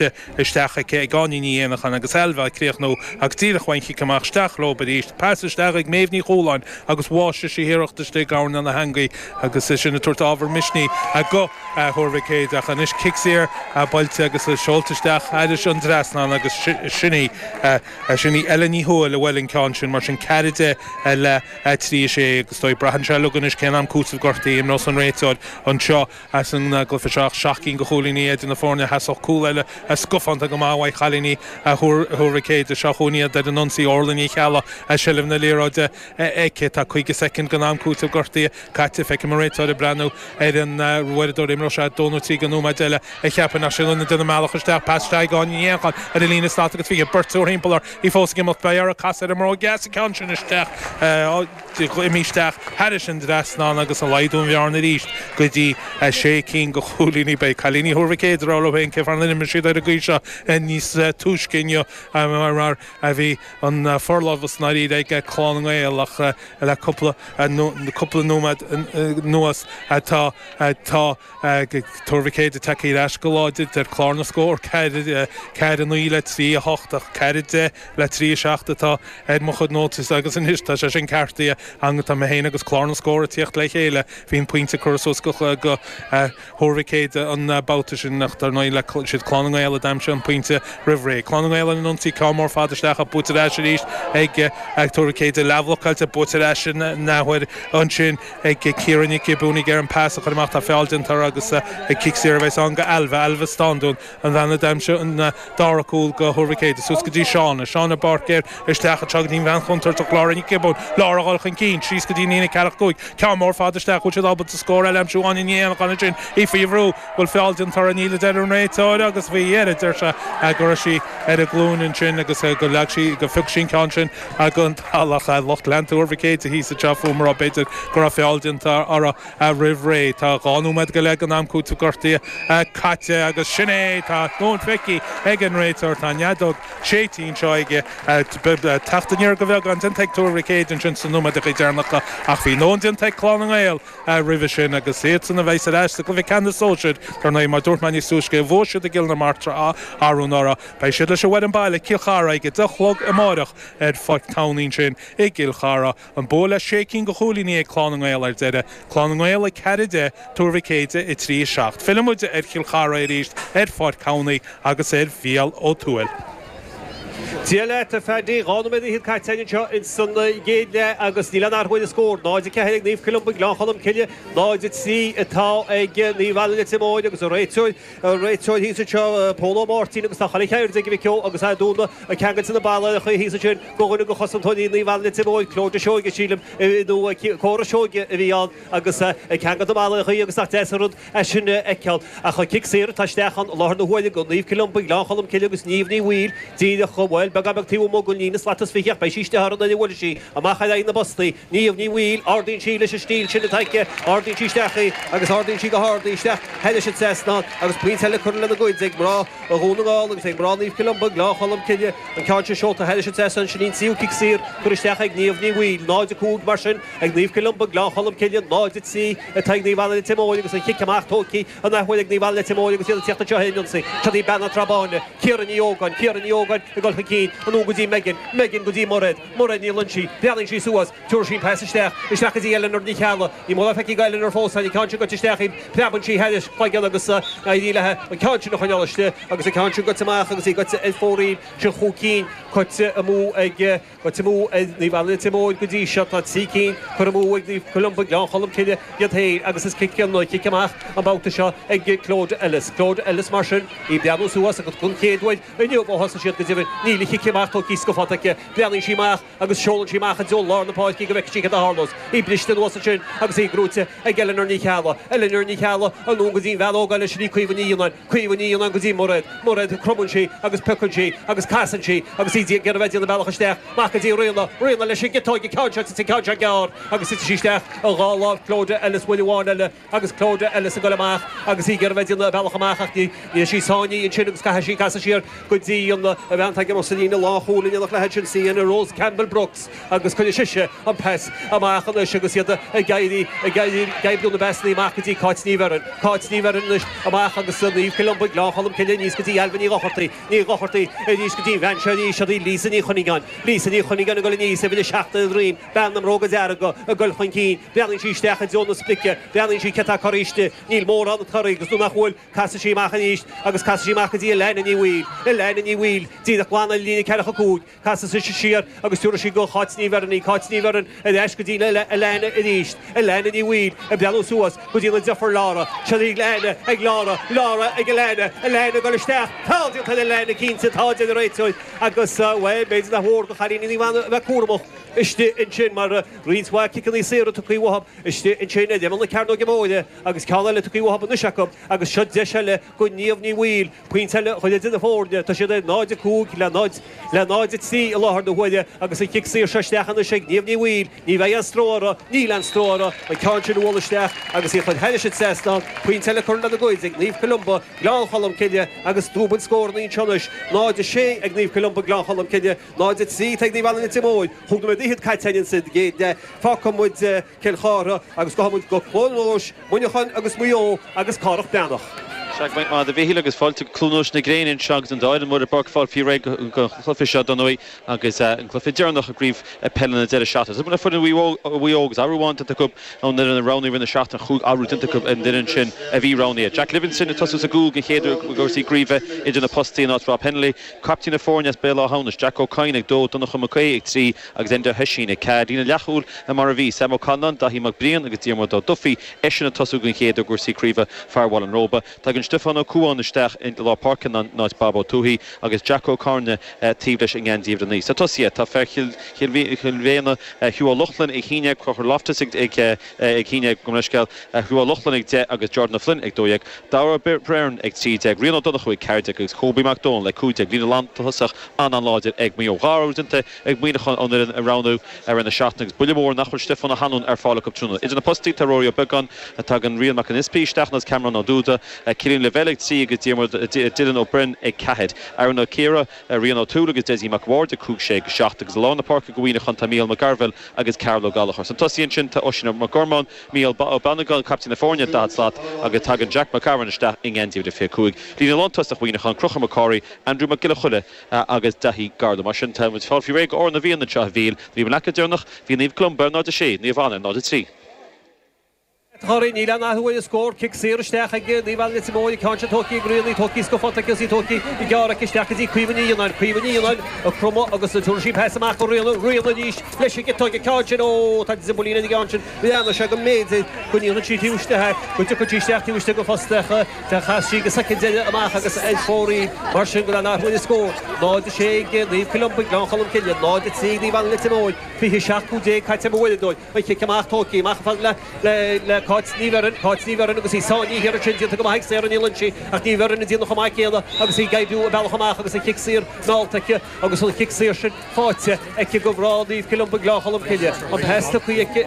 caite isteach aici ag Áine Ní Éanacháin agus Ailbhe á chríochnú ach díreach ón gcic amach isteach leob arís. Pas isteach ag Méabh Ní Chualáin agus bháigh sise a hiarracht istigh i ngabhal na heangaí agus é sin ag tabhairt ábhar misnigh go Thuar Mhic Éadaigh ach anois cic saor buailte agus é seolta isteach thairis an dtrasnán agus sin í sin í Ellen Ní Thuathail a bhuail an ceann sin mar sin ceathair a deich le trí a sé agus is dóigh braitheann sé uilig anois cén t-am cúitimh gortaithe a imreos an réiteoir anseo. Ins an gcluiche seo, seacht gcinn de chúilíní idir na foirne, theastódh cúl eile scafánta go maith uaidh chailíní Thuar Mhic Éadaigh, seo chugainn iad ar an ionsaí, Órla Ní Cheallaigh agus seilbh na liathróide aici. Tá 50 soicind den am cúitimh gortaithe caite. Feicim an réiteoir ag breathnú ar an uaireadóir. Imreoidh sé dó nó trí de nóiméid eile a cheapfainn ach sin iad ag déanamh a mbealach isteach. Pas isteach ag Áine Ní Éanacháin ar an líne slat agus fiche beirt triúr thimpeall uirthi. Í fós ag imeacht. Beidh uirthi casadh ar an mbróig dheas an ceann sin isteach. Imithe isteach thairis an dtrasnán agus ag laghdú an bhearna arís go dtí 6 cinn de chúilíní. Beidh cailíní Thuar Mhic Éadaigh á rá leo féin cén fáth nár imir siad ar an gcaoi seo níos túisce inniu mar a bhí an forlámhas i ndáiríre ag Clann na nGael ach le cúpla nóiméad anuas tá Tuar Mhic Éadaigh tagthaí ar ais go láidir, deir clár na scór, 4, 9 le 3, 8, ach 4, 10 le 3, 7 atá ar mo chuid nótaí agus anois tá sé sin ceartaithe ann, tá mé féin agus clár na scór ag teacht le chéile, bhí an pointe curtha suas acu go Thuar Mhic Éadaigh an babhta sin ach dar ndóigh is iad Clann na nGael a d'aimsigh an pointe roimh ré. Clann na nGael ar an ionsaí, ceann mór fada isteach ach buaite ar ais arís ag Tuar Mhic Éadaigh, leathbhlocáilte, buaite ar ais in athuair ansin. ag Ciara Nic Giobúin ag iarraidh an pas a chur amach, tá feall déanta uirthi agus cic saor a bheas ann go Ailbhe, Ailbhe Stándún, an bhean a d'aimsigh an dara cúl go Thuar Mhic Éadaigh, suas go dtí Shauna, Shauna Báircéir isteach go dtí an bhean chontúirteach Lára Nic Giobúin, Lára a dhul chun cinn, síos go dtí an líne ceathracha cúig, ceann mór fada isteach, bhfuil siad ábalta scór eile a aimsiú, Áine Ní Éanacháin ansin, í faoi bhrú, bhfuil feall déanta uirthi, níl a deir an réiteoir agus faoi dheireadh deir sé go raibh sí ar a glúine ansin agus go leag sí, go phioc sí an ceann sin den talamh. Lucht leanta Thuar Mhic Éadaigh thíos anseo fúm a rá, b'fhéidir, go raibh feall déanta uirthi roimh ré. Tá dhá nóiméad go leith den am cúitimh gortaithe caite agus sin é! Tá a dhóthain feicthe ag an réiteoir. Tá an fheadóg séidte anseo aige. Teacht aniar go bheagán déanta ag Tuar Mhic Éadaigh ansin sna nóiméadacha deireanacha ach bhí a ndóthain déanta ag Clann na nGael roimhe sin agus iadsan a bheas ar ais sa gcluiche ceannais sóisir, dar ndóigh. Mar dúirt mé níos túisce, bhuaigh siad i gCill na Martra, arú anuraidh. Beidh siad leis an bhfoireann baile, Cill Chartha, ag a deich a chlog amáireach ar Pháirc Thamhnaigh ansin i gCill Chartha. An bua le sé cinn go chúilíní ag Clann na nGael ar deireadh, Clann na nGael a ceathair a deich, Tuar Mhic Éadaigh a trí a seacht. Filleann muid ar Chill Chartha arís ar Pháirc Thamhnaigh agus ar Mhicheál Ó Tuathail. Dia leat a Phaddy, dhá nóiméad fhichead caite againn anseo ins an gcéad leath agus níl aon athrú ar an scór. 0-4 ag Naomh Columba, Gleann Cholm Cille, 0-3 atá ag Naomh Anna Leitir Móir agus an réiteoir, Réiteoir thíos anseo, Pól Ó Máirtín, agus tá chuile cheird ag Mhic Ó agus Aodh Dúna ag ceangal na mbarriallachaí thíos ansin go dhuine go chosantóirí Naomh Anna Leitir Móir, Clodagh Seoige, sílim, nó Cora Seoige a bhí ann, agus ag ceangal na mbarriallachaí agus nach deas an rud é sin a fheiceáil. Ach cic saor atá isteach ann, láthair na huaire ag, Naomh Columba, Gleann Cholm Cille agus Niamh Ní Bhaoill, díreach, bhuel, beagán beag taobh amuigh den líne slat is fichead, beidh sí istigh thar an uile uirlisí, amach ar aghaidh na bpostaí. Niamh Ní Bhaoill, ardaíonn sí leis an stíl sin atá aici, ardaíonn sí isteach í agus ardaíonn sí go hard í, isteach thairis an trasnán agus pointe eile le cur lena gcuid ag mná Dhún na nGall agus ag mná Naomh Columba, Gleann Cholm Cille, an ceann sin seolta thairis an trasnán, sin í an tríú cic saor curtha isteach ag Niamh Ní Bhaoill, 0-5 mar sin ag Naomh Columba, Gleann Cholm Cille, 0-3 atá ag Naomh Anna Leitir Móir agus an cic amach tógtha an athuair ag Naomh Anna Leitir Móir agus iad ag teacht anseo ar an ionsaí, seo í bean na Trá Báine, Ciara Ní Ógáin, Ciara Ní Ógáin ag dul chun cinn, anonn go dtí Megan, Megan go dtí Mairéad, Mairéad, moillíonn sí, breathnaíonn sí suas, tiúrfaidh sí an pas isteach, isteach go dtí Eileanor Ní Cheallaigh. Ní móide go bhfaighidh Eileanor fós, tá an ceann seo gaibhte isteach í, preabann sí thar a cloigeann agus ní éiríonn léi an ceann sin a choinneáil istigh, agus an ceann sin gaibhte amach agus í gaibhte ar fóraoil, sin chúig cinn curtha amú ag, gaibhte amú ag Naomh Anna Leitir Móir go dtí seo, tá trí cinn curtha amú ag Naomh Columba, Gleann Cholm Cille iad féin, agus is cic in, cic amach an babhta seo ag Clodagh Ellis. Clodagh Ellis mar sin, í ag breathnú suas agus don chéad uair, Inniu, ó thosaigh siad go deimhin, níl an cic amach tógthaí scafánta aici. Breathnaíonn sí amach agus seolann sí amach i dtreo lár na páirce go bhfeice sí cad a tharlós. Í briste anuas ansin agus í gnóite ag Eileanór Ní Cheallaigh. Eileanór Ní Cheallaigh, anonn go dtí an bhean óg eile sin í Caoimhe Ní Fhionnáin. Caoimhe Ní Fhionnáin go dtí Mairéad. Mairéad, cromann sí agus piocann sí agus casann sí agus í ag iarraidh a bheith ag déanamh a bealach isteach. Mairéad go dtí Ríona. Ríona leis an gciotóig, an ceann seo tite, an ceann seo gearr agus titeann sí isteach i dhá láimh Clodagh Ellis uair amháin eile. agus Clodagh Ellis ag goil amach agus í ag iarraidh bheith ag déanamh a bealach amach ach níl sí sáinnithe ansin agus caithfidh sí casadh siar go dtí an bhean atá ag imirt sa líne lánchúil in éineacht léi sí sin Rose Campbell Brooks agus cuirfidh sise an pas amach anois agus iad ag iarraidh ag oibriú na bpasannaí amach go dtí Cáit Ní Bheirn Cáit Ní Bheirn anois amach agus Naomh Columba Gleann Cholm Cille aníos go dtí Ailbhe Ní Dhochartaigh Ní Dhochartaigh aníos go dtí an bhean seo arís Lisa Ní Chuinneagáin Lisa Ní Chuinneagáin ag goil aníos uimhir a seacht ar a droim Bean na mbróga dearga ag dul chun cinn. Breathnaíonn sí isteach i dtreo na sprice. Breathnaíonn sí cé atá ag corraí istigh. Níl mórán ag corraí, agus nuair nach bhfuil, casann sí amach arís, agus casann sí amach go dtí Elaine Ní Bhaoill. Elaine Ní Bhaoill, díreach glan ar líne ceathracha cúig. Casann sise siar agus tiúrann sí go Cáit Ní Bheirn í. Cáit Ní Bheirn, ar ais go dtí Elaine arís. Elaine Ní Bhaoill, ag breathnú suas go dtí a deirfiúr. Laura. Seirbhísí Elaine ag Laura. Laura ag Elaine. Elaine ag dul isteach. Tá! Déanta ar Elaine, cinnte, tá, deir an réiteoir. Agus, bhuel, b'fhéidir nár mhór do Chailíní Naomh Anna a bheith cúramach. istigh ansin mar tá roinnt mhaith ciceanna saora tugtha uathu, istigh ansin ar imeall na cearnóige móire agus ceann eile tugtha uathu anois acu, agus seo deis eile go Niamh Ní Bhaoill, pointe eile a chur le scór na foirne, tá siad ar 0-5 le 0 le 0-3 i láthair na huaire agus an cic saor seo isteach anois ag Niamh Ní Bhaoill, ní bheidh aon stró uirthi, níl aon stró uirthi, an ceann sin a bhualadh isteach agus í a chur thairis an trasnán, pointe eile curtha lena gcuid ag Naomh Columba, Gleann Cholm Cille agus dúbail scór an fhreasúra anois, 0-6 ag Naomh Columba, Gleann Cholm Cille. 0 3 Taigh Naomh Anna Litir Móir Thug na Medaichid Caitiain in said gcéad deich Fágfaidh muid Cill Chartha agus gabhfaidh muid go Cluain Eois, Muineacháin agus Maigh Eo agus Cárach Breathnach. Sea go raibh maith agat a Mhichíl agus Fáilte go Cluain Eois na Gréine anseo agus tá muid ag fáil faoi réir don chluiche seo don Ui agus an cluiche deireanach i gCraobh Peile na Deireadh Seachtaine. foireann Mhaigh Eo agus athrú amháin déanta acu ón fhoireann a roghnaíodh i rith na seachtaine aon athrú déanta acu ar an fhoireann sin a bhí roghnaithe. Jack Livingston ag tosú sa gcúl den chéad uair i gcúrsaí craoibhe idir na postaí in áit Rob Hennelly. Caiptín na foirne as Béal Átha hAmhnais, Jack Ó Cadhain, ag dó, Donnchadh Mac Aoidh, ag trí, agus Enda Hoisin, ag ceathair. Líne leathchúil le mar a bhí, Sam Ó Calláin, Daithí Mac Briain agus Diarmuid Ó Dufaí, eisean ag tosú den chéad uair i gcúrsaí craoibhe fear Bhaile an Róba. Tagann Stiofán Ó Cuain isteach i lár páirce in áit Bob Ó Tuathaigh agus Jack Ó Cearnaigh taobh leis i ngeansaí uimhir a naoi. Sna tosaithe tá fear Chill Mhéine Hugh Ó Lochlainn ag shíneadh, Conchúr Loftus ag. ag a haon déag, gabh mo leithscéal, Hugh Ó Lochlainn ag 10 agus Jordan Ó Floinn ag 12, Darragh Beirne ag 13, Rian Ó Donnchú ag 14 agus Cóbie Mac Dónaill ag 15. Líne lántosach an-an-láidir ag Maigh Eo. Dhá athrú déanta ag Muineachán ón fhoireann a roghnaíodh i rith na seachtaine agus buille mór nach bhfuil Stiofán Ó hAnluain ar fáil acu tráthnóna. Idir na postaí tá Rory Ó Beagáin, tagann Rian Mac an Easpaig isteach agus Cameron Ó Dúda, Cillian Lavelle ag 3 agus Diarmuid Dylan Ó Broin ag ceathair. Aaron Ó Ciardha. le Rian Ó Tuathail agus Dessie Mac Bhaird ag cúig 6 agus 7 agus i lár na páirce do Mhuineachán tá Micheál Mac Gairbheil agus Cathal Ó Gallachóir sna tosaithe ansin tá Oisín Mac Gormáin, Mícheál Ba Ó Beannagáin, caiptín na foirne, 40 slat agus tagann Jack Mac Gabhann isteach i ngeansaí uimhir 25. Líne lántosach Mhuineacháin, Conchúr Mac Corraidh, Andrew Mac Giolla Choille agus Daithí Garland. Mar sin tá muid ag fáil faoi réir do Amhrán na bhFiann anseo a Mhichíl, an bhabhta deireanach, bhí Naomh Columba ar 0-6, Naomh Anna 0-3. Sa chorn, níl ann ach uair a scór, cic saor isteach ag Naomh Anna Leitir Móir, ag ceann sin Toti ag Rianaí, Toti ag Scaffotti agus is í Toti ag ciceáil aici isteach go dtí Caoimhe Ní Fhionnáin, Caoimhe Ní Fhionnáin ag cromadh agus ag tabhairt sí pas amach go Riona, Riona arís leis an giota ag ceann sin, óóó tá Dzimbelina ina gceann sin, d'amharc sé go mb'fhéidir go ndéanfadh sí taobh istigh é, go dtiocfadh sí isteach taobh istigh go fosta ach chas sí ag an soicind eile amach agus ar chóir í mar sin go dtáinig uainn an scór. 0-6 ag Naomh Columba, Gleann Cholm Cille, 0-3 ag Naomh Anna Leitir Móir, 27, 15 caite ag an bhuaille dóibh. Cic amach, tugtha amach an fad le le Cáit Ní Bheirn, Cáit Ní Bheirn agus í sáinnithe ansin déanta go maith ag Sarah Ní Loingsigh ach Ní Bheirn ag déanamh chomh maith céanna agus í ag oibriú a bealach amach agus an cic saor meallta aici agus an cic saor sin fáighte aici go breá Naomh Columba Gleann Cholm Cille. An pas tugtha aici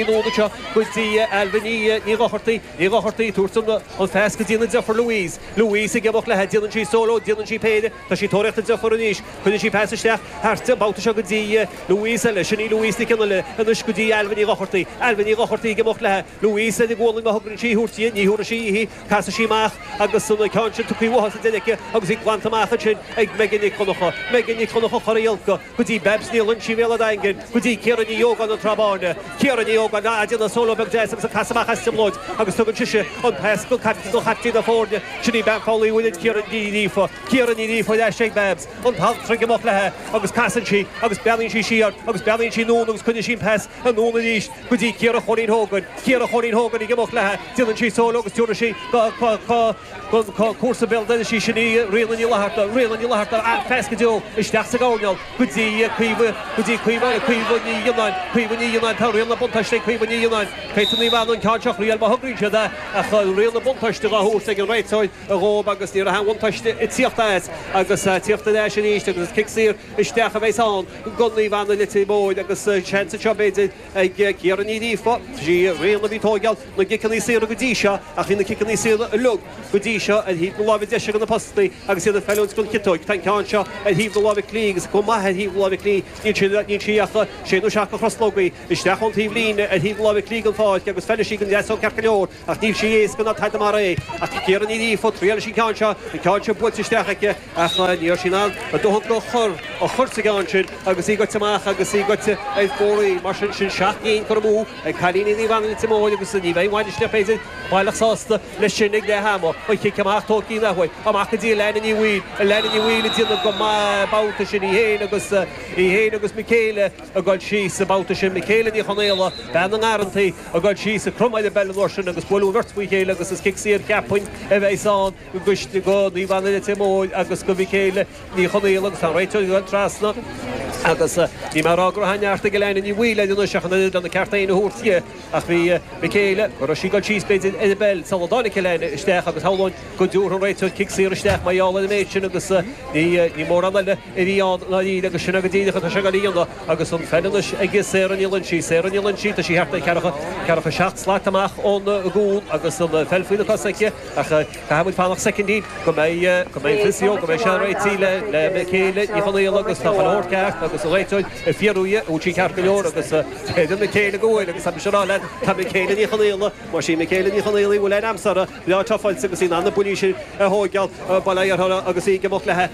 anonn anseo go dtí Ailbhe Ní Ní Dhochartaigh, Ní Dhochartaigh ag tabhairt an an phas go dtí an an deirfiúr Louise, Louise ag imeacht léi déanann sí solo déanann sí péire, Tá sí ag tóraíocht í a chur aníos. Cuirfidh sí pas isteach thart an babhta seo go dtí Louise eile. Sin í Louise Nic Fhionnghaile anois go dtí Ailbhe Ní Dhochartaigh. Ailbhe Ní Dhochartaigh ag imeacht léi, Louise ar a gualainn má thograíonn sí í a thabhairt di. Ní thabharfaidh sí uaithi. Casfaidh sí amach agus an ceann sin tugtha uaithi sa deireadh aici agus í glanta amach ansin ag Megan Nic Dhonncha. Megan Nic Dhonncha, Corraí Olca. go dtí Babs Ní Loinsigh Bhéal an Daingin, go dtí Ciara Ní Ógáin an Trá Báine, Ciara Ní Ógáin ag déanamh solo beag deas agus ag casadh amach as trioblóid agus tugann sise an pas go caiptín na foirne, sin í bean Chabhlaigh Uillinn Ciara Ní Ghríofa. Ciara Ní Ghríofa ar ais ag Babs, an t-alt troigh amach léi agus casann sí agus breathnaíonn sí siar agus breathnaíonn sí anonn agus coinníonn sí an pas anonn arís go dtí Ciara Chóilín Hogan. Ciara Chóilín Hogan ag imeacht léi, déanann sí solo agus tabharfaidh sí go Comharsa béal dorais í sin í Ríona Ní Fhlatharta. Ríona Ní Fhlatharta an-phas go deo, isteach sa gcoirnéal go dtí Caoimhe, go dtí Caoimhe agus Caoimhe Ní Ghionnáin. Caoimhe Ní Ghionnáin, tá riail na buntáiste ag Caoimhe Ní Ghionnáin. Caitheann Naomh Anna an ceann seo a thraíáil má thograíonn siad é ach tá riail na buntáiste dhá thabhairt ag an réiteoir dhóib agus ní raibh aon bhuntáiste ag tíocht as agus tíocht ar ais arís agus is cic saor isteach a bheas ann go Naomh Anna, Leitir Móir agus seans anseo b'fhéidir. ag Ciara Ní Ghríofa. Sí Ríona a bhí ag tóigeáil na gciceanna saora go dtí seo ach bhí na ciceanna saora uilig go dtí seo ar thaobh na láimhe deise de na postaí agus iad ag feiliúint don chiotóig. Tá an ceann seo ar thaobh na láimhe clí agus go maith ar thaobh na láimhe clí. Níl sí níl sí ach sé nó seacht de thruslógaí isteach ón taobh líne ar thaobh na láimhe clí den pháirc agus feilfidh sí don deasóig ceart go leor. Ach níl sé éasca ná tada mar é. Ach Ciara Ní Ghríofa, traíálfaidh sí an ceann seo, an ceann sin buailte isteach aici, ach ní raibh sí in ann a dóthain a chur a chur sa gceann sin agus í goite amach agus í goite ar fóraoil. Mar sin sin seacht gcinn curtha amú ag cailíní Naomh Anna Leitir Móir agus ní bheidh an bainisteoir, b'fhéidir, baileach sásta leis sin ag leath ama. An cic amach tógtha in athuair. Amach go dtí Elaina Ní Bhaoill. Elaina Ní Bhaoill ag déanamh go maith an babhta sin. Í féin agus í féin agus Michaela ag dul síos an babhta sin. Michaela Ní Chonaola, bean na nGarrantaí. Ag dul síos ag cromadh ar an bpeil an uair sin agus buaileadh an bheirt faoi chéile agus is cic saor cheapfainn a bheas ann go Naomh Anna Leitir Móir agus go Mhichaela Ní Chonaola agus tá an réiteoir ag dul trasna agus níl mé ag rá go raibh aon neart ag Elaine Ní Bhaoill anois ach an oiread lena ceart féin a thabhairt di ach bhí Michaela, go raibh sí ag dul síos b'fhéidir ar an bpeil sular dtáinig Elaine isteach agus shamhlóinn go dtabharfadh an réiteoir cic saor isteach mar gheall ar an méid sin agus ní mórán eile. i bhfiáin ná lín, agus sin é go díreach atá sé ag éirí iontu, agus an pheil anois ag Sarah Ní Loinsigh. Sarah Ní Loinsigh, tá sí thart ar cheathracha, ceathracha seacht slat amach ón gcúl, agus an pheil faoina cos aici, ach caithfimid fanacht soicindí go mbeidh, go mbeidh an physio, go mbeidh sé réitithe le, le Michaela Ní Chonaola, agus tá chuile shórt ceart, agus an réiteoir ag fiarú dhi, an bhfuil sí ceart go leor, agus creideann Michaela go bhfuil, agus tá mise ag rá leat, tá Michaela Ní Chonaola, más sí Michaela Ní Chonaola í, bhfuil aon am sara breá tráthfhillte, agus í in ann na buillí sin a thóigeáil, bail ó Dhia uirthi, agus í ag imeacht léi.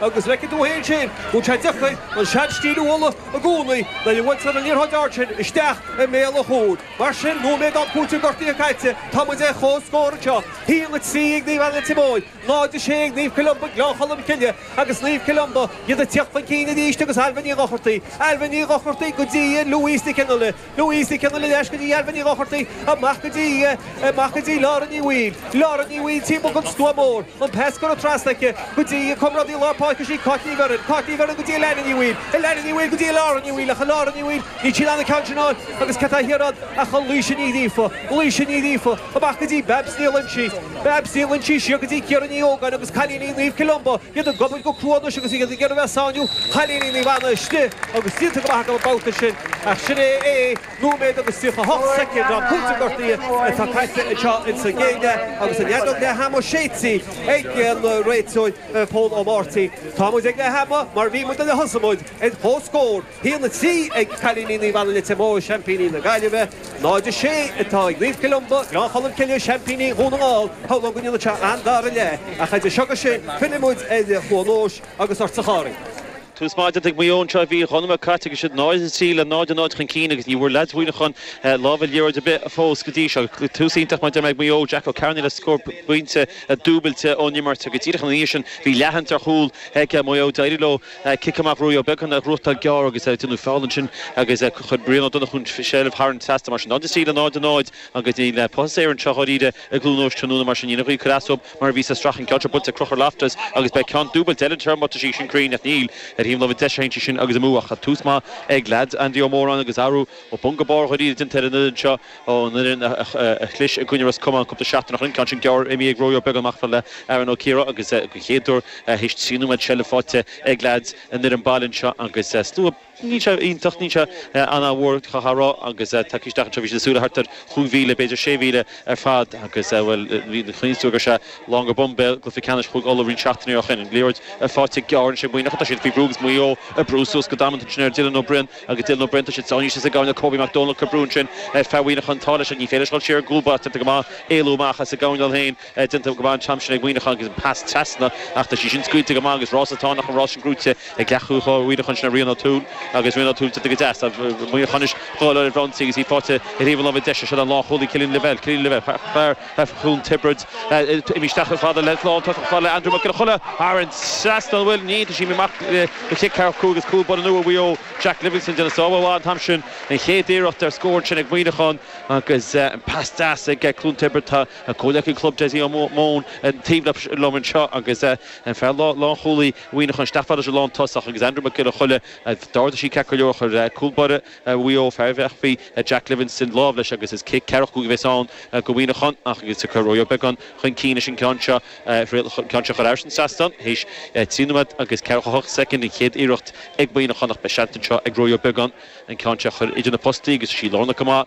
Agus feicfidh tú fhéin sin, go bhfuil sé deacair an seanstíl a mholadh i gcónaí, nuair a bhuailtear an liathróid ard sin isteach i mbéal an chúil. Mar sin, nóiméad d'am cúitimh gortaithe caite, tá muid ar chomhscór anseo, 1-3 ag Naomh Anna Leitir Móir, 0-6 ag Naomh Columba Gleann Cholm Cille, agus Naomh Columba iad ag tíocht chun cinn arís agus Ailbhe Ní Dhochartaigh, Ailbhe Ní Dhochartaigh go dtí Louise Kennelly. Louise Kennelly ar ais go dtí Ailbhe Ní Dhochartaigh amach go dtí amach go dtí Lauren Ní Bhaoill. Lauren Ní Bhaoill timpeall den stua mór. An pas curtha trasna aici go dtí a comrádaí lár páirce sin Cáit Ní Bheirn. Cáit Ní Bheirn go dtí Elanna Ní Bhaoill. Elanna Ní Bhaoill go dtí Lauren Ní Bhaoill ach Lauren Ní Bhaoill níl sí in ann an ceann sin a fháil agus cé atá thiar ann ach Laoise Ní Ghríofa. Laoise Ní Ghríofa. Amach go dtí Babs Ní Loinsigh, Babs Ní Loinsigh, siar go dtí Ciara Ní Ógáin agus cailíní Naomh Columba, iad ag obair go crua anois agus iad ag iarraidh bheith ag sáinniú chailíní Naomh Anna istigh agus díonta go maith acu an babhta sin ach sin é é, nóiméad agus 38 soicind d'am cúitimh gortaithe atá caite anseo ins an gcéad leath agus an fheadóg leath ama séidte ag an réiteoir Pól Ó Máirtín. Tá muid ag leath ama mar bhí muid nuair a thosaigh muid ar chomhscór. 1, 3 ag cailíní Naomh Anna Leitir Móir, seaimpíní na Gaillimhe, 0, 6 atá ag Naomh Columba, Gleann Cholm Cille, seaimpíní Dhún na nGall. Shamhlóinn go ndéanann sé an-dara leath, ach idir seo agus sin, fillfidh muid ar Chluain Eois agus ortsa a Chárthaigh. Tús maith déanta ag Maigh Eo anseo bhí dhá nóiméad caite agus iad 0, 3 le 0, 0 chun cinn agus ní bhfuair leaids Mhuineacháin lámh ar liathróid ar bith fós go dtí seo. Tús iontach mar a deirim ag Maigh Eo, Jack Ó Cearnaigh le scór phointe dúbailte ón imirt agus díreach ina dhiaidh sin bhí leathshans ar chúl ag Maigh Eo. D'éirigh leo. Cic amach Ruairí Ó Beagáin, a fháil gearr agus ag déanamh feall ansin agus chuir Ryan Ó Donnchú sé sin thar an trasna mar sin. Náid a trí, 0-0 agus níl puth as aer anseo dháiríre i gCluain Eois tráthnóna mar sin níor ghaibh cuid asaób mar a bhí sa Strachan ceann seo bainte ag Crochúr Loftus agus beidh ceann dúbailte eile an iarraidh seo má tá sí sin cruinn ach níl ar thaobh na láimhe deise a théann sí sin agus amú ach tús maith ag leaids Andy Ó Móráin agus athrú ó bhun go barr dháiríre déanta ar an fhoireann seo. Ó, an fhoireann a chlis i gcoinne Ros Comáin cúpla seachtain ó shin, ceann sin gearr imithe ag Rory beagán amach le Aaron Ó Ciardha agus den chéad uair théis trí nóiméad seilbh faighte ag leaids an fhoireann baile anseo agus slua níl sé iontach, níl sé an-mhór caithfeá a rá agus muid ag tíocht isteach anseo bhí siad ag súil le thart ar chúig mhíle, b'fhéidir sé mhíle ar fad agus bhuel chuimhníos tú gur sé Longer Bombay cluiche ceannais Chúige Uladh roinnt seachtainí ó shin. Liathróid faighte gearr ansin Muineachán tá siad faoi bhrú agus Maigh Eo ag brú suas go damanta ansin ar Dylan Ó Briain, Agus d'fhill na brentais sáinnithe thíos sa gcoirnéal Kobe Mac Dónaill ag cur brú ansin ar fhear Mhuíneacháin an t-ádh leis ach ní féidir leis dhul siar ar an gcúl báire déanta go maith éalú amach as an gcoirnéal féin déanta go maith an t-am sin ag Muíneachán agus an pas trasna ach tá sí sin scaoilte go maith amach agus rás atá ann ach an rás sin gnóite ag leathchúlaí láir Mhuíneacháin sin é Rian O'Toole agus Rian O'Toole déanta go deas tá Muíneachán anois ag dul i mbun ionsaí agus í faighte ar thaobh na láimhe deise sin an lánchúlaí Killian Lavelle Killian Lavelle Cluain Tiobraid. Imigh isteach chomh fada leis an lántosach slán le Andrew Mac Giolla Choille thar an treas don bhuille ní dusím amach le cic ceathracha cúig ach cúl báire nua Mhaigh Eo Jack Livingstone déanamh sábháil mhaith an t-am sin an chéad iarracht ar scór ansin ag Muineachán agus an pas deas ag Cluain Tiobraid tá comhleacaí club Dessie Ó Maoin taobh liom anseo agus an fear lánchúlaí Mhuineacháin isteach fad leis an lántosach agus Andrew Mac Giolla Choille d'ardaigh sé ceart go leor chuir cúl báire Mhaigh Eo, fear Bhréachmhaí Jack Livingstone lámh leis agus is cic ceathracha cúig a bheas ann go Muineachán ach agus ag cur Rory Beggan chun cinn leis an gceann seo a chur ar ais an seastán théis trí nóiméad agus 48 soicind. An chéad iarracht ag Muineachán ach beidh seans anseo ag Rory Beggan an ceann seo a chur idir na postaí agus is í lárnach go maith